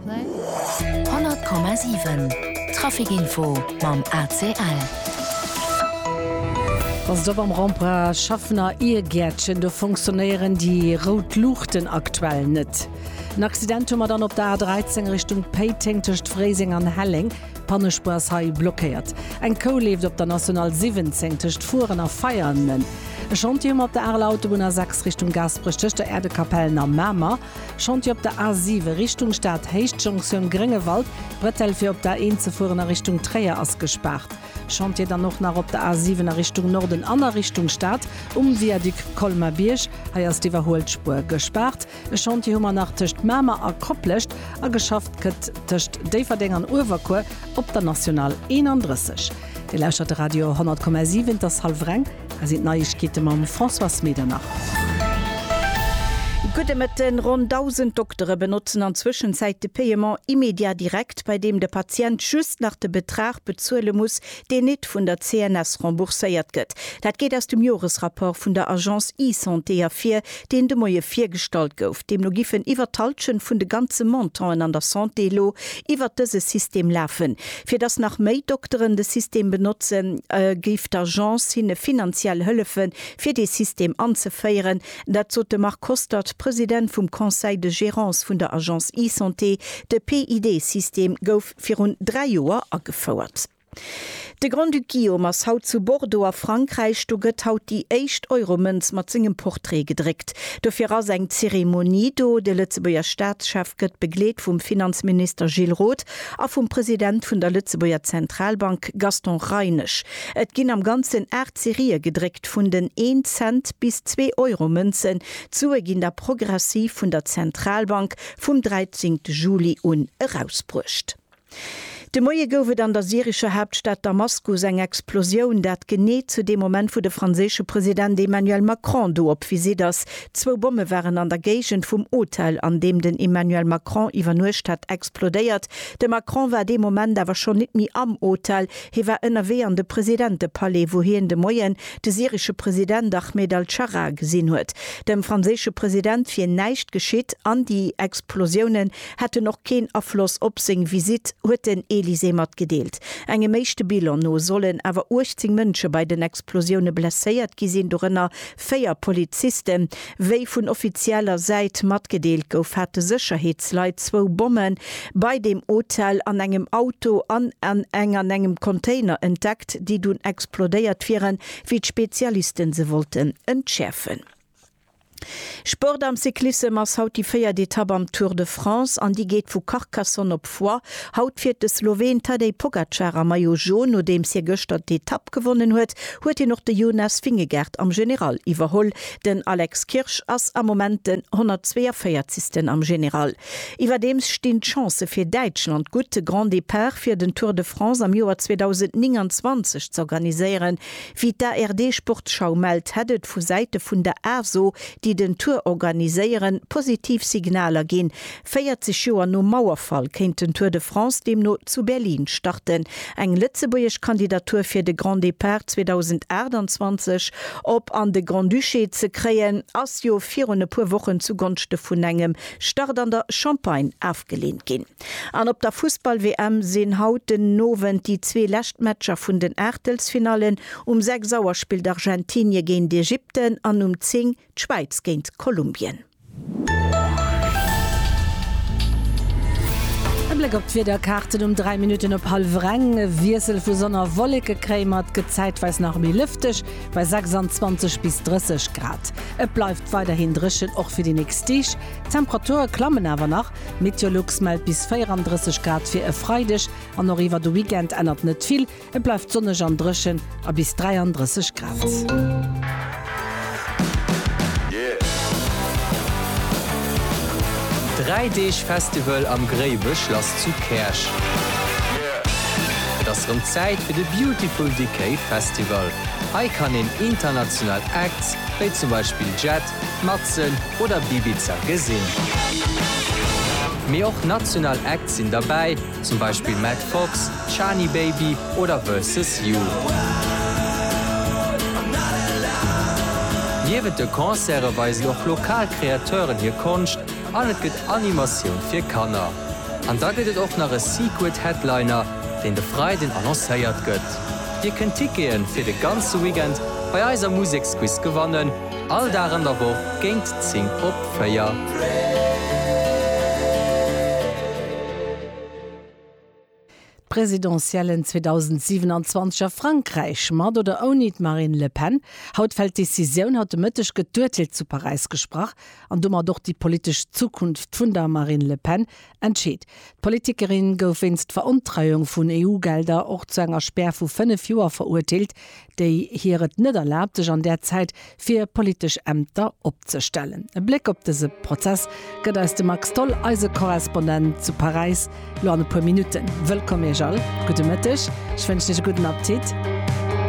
100,7 Trafic info mam ACL. Ass et op am Rempra-Schaffner Iergäertchen, do fonctionnéieren déi rout Luuchten aktuell net. En Accident hu mer dann op der A 13 Richtung Péiteng tëscht Fréiseng an Helleng, Pannespuer ass hei blockéiert. Eng Kou leeft op der National 17 tëscht Furen a Veianen. E Chantier hu mer op der Areler Autobunn A 6 Richtung Gaasperech tëscht der Äerdekapellen a Mamer. Chantier op der A7 Richtung Stad, Héichtjonktioun Gréngewald, Brettell fir op der A1 ze fueren a Richtung Tréier ass gespaart. Chantier dann och nach op der A7 a Richtung Norden an a Richtung Stad um Viaduc Colmar-Bierg, hei ass d'iwwerhuelt Spuer gespaart. E Chantier hu mer nach tëscht Mamer a Koplescht a geschafft gëtt tëscht Déifferdeng an Uewerkuer op der National 31. Dir lauschtert de Radio 100,7, et ass hallef reng. Hei sinn d'Neiegkeete mam Françoise Medernach. Gudde Mëtten, Ronn 1.000 Doktere benotzen an Zwëschenzäit de Paiement immédiat direct, bei deem de Patient just nach de Betrag bezuele muss, deen nit vun der CNS rembourséiert gëtt. Dat geet aus dem Joresrapport vun der Agence e-Santé ervir, deen de Moie virgestallt gouf. Deemno giffen iwwert d'Halschent vun de ganze Montanten an der Santé elo iwwert dëse System lafen. Fir datt nach méi Dokteren de System benotzen, géif d'Agence hinne finanziell hëllefe fir dee System anzeféieren. Dat sot de Marc Kostert, President vum Conseil de gérance vun der Agence eSanté. De PID-System gouf virun dräi Joer agefouert. De Grand-Duc Guillaume ass haut zu Bordeaux a Frankräich. Do gëtt haut déi éischt Euro-Mënz mat sengem Portrait gedréckt. Dofir ass eng Zeremonie do. De Lëtzebuerger Staatschef gëtt begleet vum Finanzminister Gilles Roth a vum President vun der Lëtzebuerger Zentralbank Gaston Reinesch. Et ginn am Ganzen aacht Serië gedréckt, vun den Een-Cent bis Zwee-Euro-Mënzen. D'Sue ginn da progressiv vun der Zentralbank vum 13 Juli un erausbruecht. De Moie gouf et an der syrescher Haaptstad Damaskus eng Explosioun, dat genee zu deem Moment, wou de franséische President Emmanuel Macron do op Visitt ass. Zwou Bomme waren an der Géigend vum Hotel, an deem den Emmanuel Macron iwwernuecht hat, explodéiert. De Macron war dee Moment awer schonn nit méi am Hotel, hie war ënnerwee an de Presidentepalais, wou hien de Moien de syresche President Ahmed al-Scharra gesinn huet. Dem franséische President wier näischt geschitt an déi Explosioune hätten och keen Afloss op seng Visitt, huet den Elysée matgedeelt. Engem éischte Bilan no sollen awer 18 Mënsche bei den Explosioune blesséiert gi sinn, dorënner véier Polizisten. Wéi vun offizieller Säit matgedeelt gouf, hate Sécherheetsleit zwou Bomme bei deem Hotel an engem Auto an an eng an engem Container entdeckt, déi dunn explodéiert wieren, wéi d'Spezialiste se wollten entschäerfen. Sport am Cyclissem ass haut déi véiert Etapp am Tour de France an déi geet vu Carcassonne op Foix. Haut fiert de Sloween Tadej Pogacar am Maillot Jaune. Nodeems hie gëschter d'Etapp gewonnen huet, huet hien och de Jonas Vingegaard am General iwwerholl. Den Alex Kirsch ass am Moment den 142. am General. Iwwerdeems stinn d'Chancë fir Däitschland gutt, de Grand Départ fir den Tour de France am Joer 2029 z'organiséieren. Wéi d'ARD-Sportschau mellt, hätt et vu Säite vun der ASO, déi den Tour organiséieren, positiv Signaler ginn. 40 Joer nom Mauerfall kéint den Tour de France deemno zu Berlin starten. Eng lëtzebuergesch Kandidatur fir de Grand Départ 2028 op an de Grand-Duché ze kréien, ass jo virun e puer Wochen zugonschte vun engem Start an der Champagne afgeleent ginn. An op der Fussball-WM sinn haut den Owend déi zwee lescht Matcher vun den Aachtelsfinallen. Um 6 Auer spillt Argentinie géint Ägypten an um 10 d'Schwäiz géint Kolumbien. E Bléck op d'Wiederkaarten um 3 Minutten op hallwer eng. E Wiessel vu Sonn a Wollekekrämer, et gëtt zäitweis nach méi lëfteg bei 26 bis 30 Grad. Et bleift weiderhin dréchen och fir déi nächst Deeg, d'Temperature klammen awer nach. Meteolux mellt bis 34 Grad fir e Freideg an och iwwer de Weekend ännert net vill, et bleift sonneg an dréchen a bis 33 Grad. Dräi Deeg Festival am Gréiwechlass zu Käerch. Et ass rëm Zäit fir de Beautiful Decay Festival. Hei kann een international Acts, wéi zum Beispill Jett, Matzen oder Bibiza gesinn. Mee och national Acts sinn derbäi, zum Beispill Matt Fox, Chani Baby oder Versus You. Niewent de Concerte weisen och lokal Kreateuren hir Konscht an et gëtt Animatioun fir Kanner. An da gëtt et och nach e Secret Headliner, deen de Freiden annoncéiert gëtt. Dir kënnt Tickete fir de ganze Weekend bei eiser Museksquiz gewannen. All Dag an der Woch géint 10 op 4. D'Presidentiellen 2027 a Frankräich, mat oder ouni d'Marine Le Pen. Haut fält d'Decisioun. Haut de Mëtteg gëtt d'Urteel zu Paräis gesprach an domat och déi politesch Zukunft vun der Marine Le Pen Entscheet. D'Politikerin gouf wéinst Verontreiung vun EU-Gelder och zu enger Spär vu 5 Joer verurteelt, déi hir et net erlaabt, sech an där Zäit fir politesch Ämter opzestellen. E Bléck op dëse Prozess gëtt eis de Max Tholl, eise Korrespondent zu Paräis, lo an e puer Minutten. Wëllkomm Iech all, gudde Mëtteg, ech wënschen Iech e gudden Appetit.